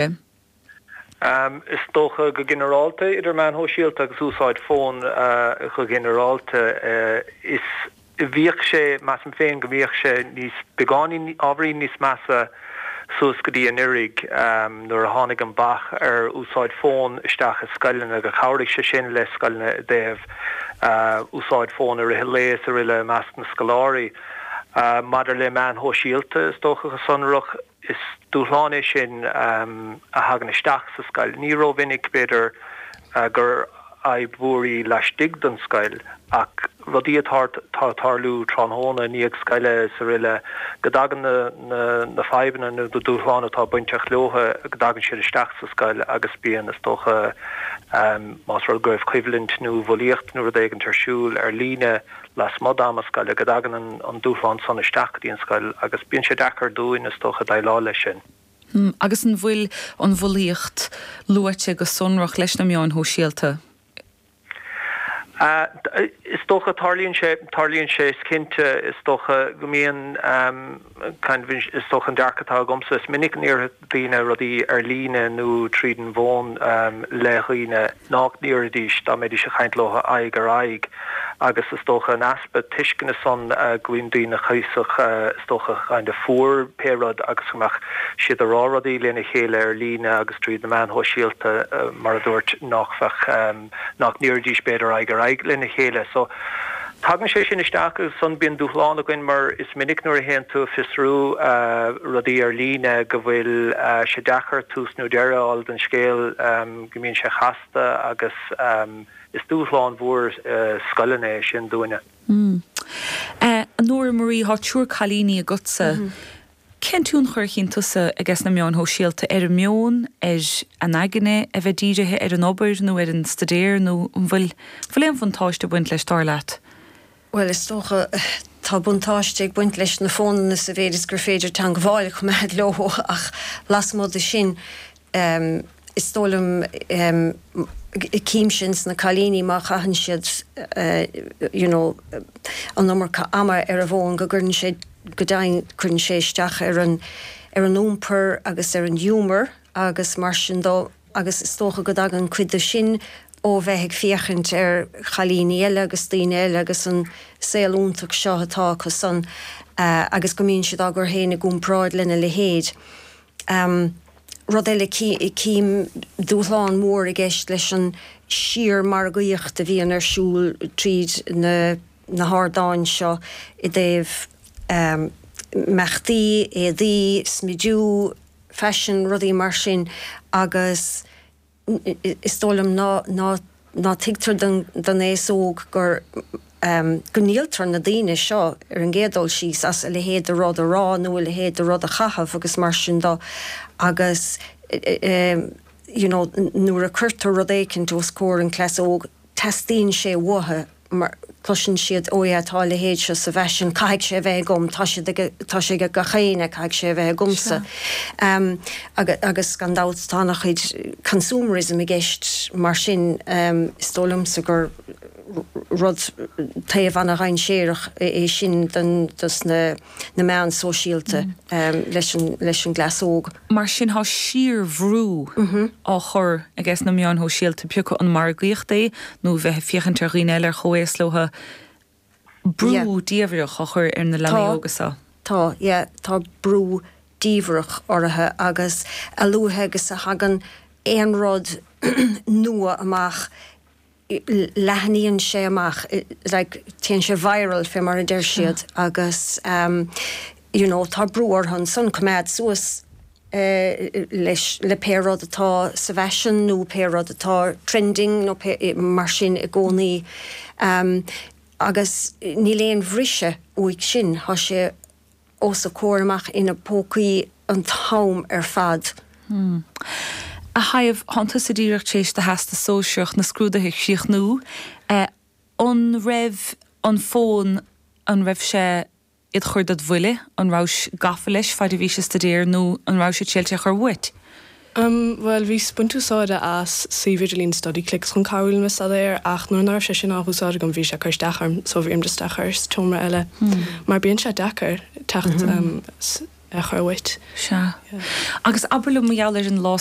Is dócha go ginearálta, idir meáin shóisialta agus úsáid fóin go ginearálta, is, bhíodh sé, measaim féin go mbíodh sé níos, beagáinín, ábhairín níos measa suas go dtí anuraidh nuair a tháinig an bac ar úsáid fóin isteach i scoileanna, gur chabhraigh sé sin le scoileanna i dtaobh úsáid fóin i rith an lae is aroile i measc na scoláirí. Maidir le meáin shóisialta, is dócha go sonrach, Is dúshlán é sin a thagann isteach sa scoil. Ní rómhinic, b'fhéidir, gur fhadhb mhór í laistigh den scoil, ach rudaí atá ag tarlú tráthnóna i ndiaidh scoile is aroile, go dtagann na fadhbanna nó na dúshláin atá bainteach leo, go dtagann siad isteach sa scoil agus bíonn, is dócha, má tharla go raibh coimhlint nó bulaíocht nó rud éigint ar siúl ar líne, lasmuigh d'am scoile, go dtagann an dúshlán san isteach go dtí an scoil agus bíonn sé deacair dúinn, is dócha, déileáil leis sin. Hm, agus an bhfuil an bhulaíocht luaite go sonrach leis na meáin shóisialta? Hm, is dócha, tarlaíonn sé, tarlaíonn sé, is cinnte, is dócha go mbíonn. Cinnte is dócha an dearcadh atá agamsa. Is minic a ndéarfadh daoine rudaí ar líne nó tríd an bhfón le daoine nach ndéarfaidís dá mbeidís ag caint leo aghaidh ar aghaidh agus is dócha an easpa tuisceana san go mbíonn daoine cuíosach is dócha kind of fuar pé rud agus go mbeadh siad ag rá rudaí lena chéile ar líne agus tríd na meáin shóisialta mar a dúirt nach mbeadh nach ndéarfaidís b'fhéidir aghaidh ar aghaidh lena chéile. So tagann sé sin isteach agus ansan bíonn dúshlán againn mar is minic nuair a théann tú a fiosrú rudaí ar líne go bhfuil sé deacair tús nó deireadh a fháil don scéal go mbíonn sé casta agus is dúshlán mhór scoile é sin dúinne. Nóra Marie, tá triúr cailíní agatsa. Cén tionchar a chíonn tusa i gcás na meáin shóisialta ar an meon, ar an aigne a bheith dírithe ar an obair nó ar an staidéar nó an bhfuil aon bhuntáiste ag baint leis dar leat? Bhuel, is dócha, tá buntáiste ag baint leis na fónanna sa mhéid is gur féidir teangmháil a choimeád leo ach lasmuigh de sin, em is dóigh liom em cím sin sna cailíní má chaitheann siad eh you know an iomarca ama ar a bhfón go gcuireann sé go deimhin cuireann sé isteach ar an ar an iompar agus ar an ghiúmar agus mar sin de agus is dócha go dtagann cuid de sin ó bheith ag féachaint ar chailíní eile agus daoine eile agus an saol iontach seo atá acusan eh agus go mbíonn siad á gcur féin i gcomparáid lena leithéid. Um, rud eile, cím dúshlán mór i gceist leis an síormhargaíocht a bhíonn ar siúl tríd na hardáin seo i dtaobh imeachtaí, éadaí, smidiú, fashion, rudaí mar sin agus. is dóigh liom ná tuigtear don aos óg gur, go ndíoltar na daoine seo, ar an gcéad dul síos, as a leithéid de rud a rá nó a leithéid de rud a chaitheamh agus mar sin de agus, you know, nuair a cuirtear rud éicint os comhair an chleas óig, Teastaíonn sé uathu, mar cloiseann siad, Ó, yeah, tá a leithéid seo sa bhfaisean, caithfidh sé a bheith agam, tá siad ag, tá sé ag gach éinne, caithfidh sé a bheith agamsa. Agus, agus gan dabht, tá an-chuid consumerism i gceist, mar sin, is dóigh liomsa gur rud, taobh an-dhainséarach é sin don, dos na. na meáin shóisialta leis an gcleas óg. Mar sin tá síorbhrú á chur ages na meáin shóisialta, pé acu an margaíocht é nó bheith ag féachaint ar dhaoine eile ar chomhaos leothu, brú diamhaireach á chur ar na leanaí óga seo. Tá, yeah, tá brú diamhaireach orthu agus a luaithe agus a thagann aon rud nua amach, leathnaíonn sé amach, like téann sé viral fé mar a deir siad agus you know tá brú orthu ansan coimeád suas le, le pé rud atá sa bhfaisean nó pé rud atá trending nó pé mar sin i gcónaí agus níl aon bhriseadh uaidh sin, tá sé. os a comhair amach ina bpócaí an t-am ar fad. A Shaidhbh, thánn tusa díreach tar éis do Theastas Sóisearach na scrúduithe a chríochnú. An raibh an fón, an raibh sé id chur ded bhuille, an rabhais gafa leis faid a bhís ag stuidéar nó an rabhais ábalta é a chur uait? Um, bhuel, bhíos ag baint úsáide as suíomh idirlín Studyclix chun cabhrú liom le staidéar ach nuair ná raibh sé sin á úsáid agam bhí sé ag cur isteach orm so bhí orm just é a chur sa tseomra eile mar bíonn sé deacair teacht, em, s', é a chur uait. Sea. Agus abair liom mar gheall ar an Law.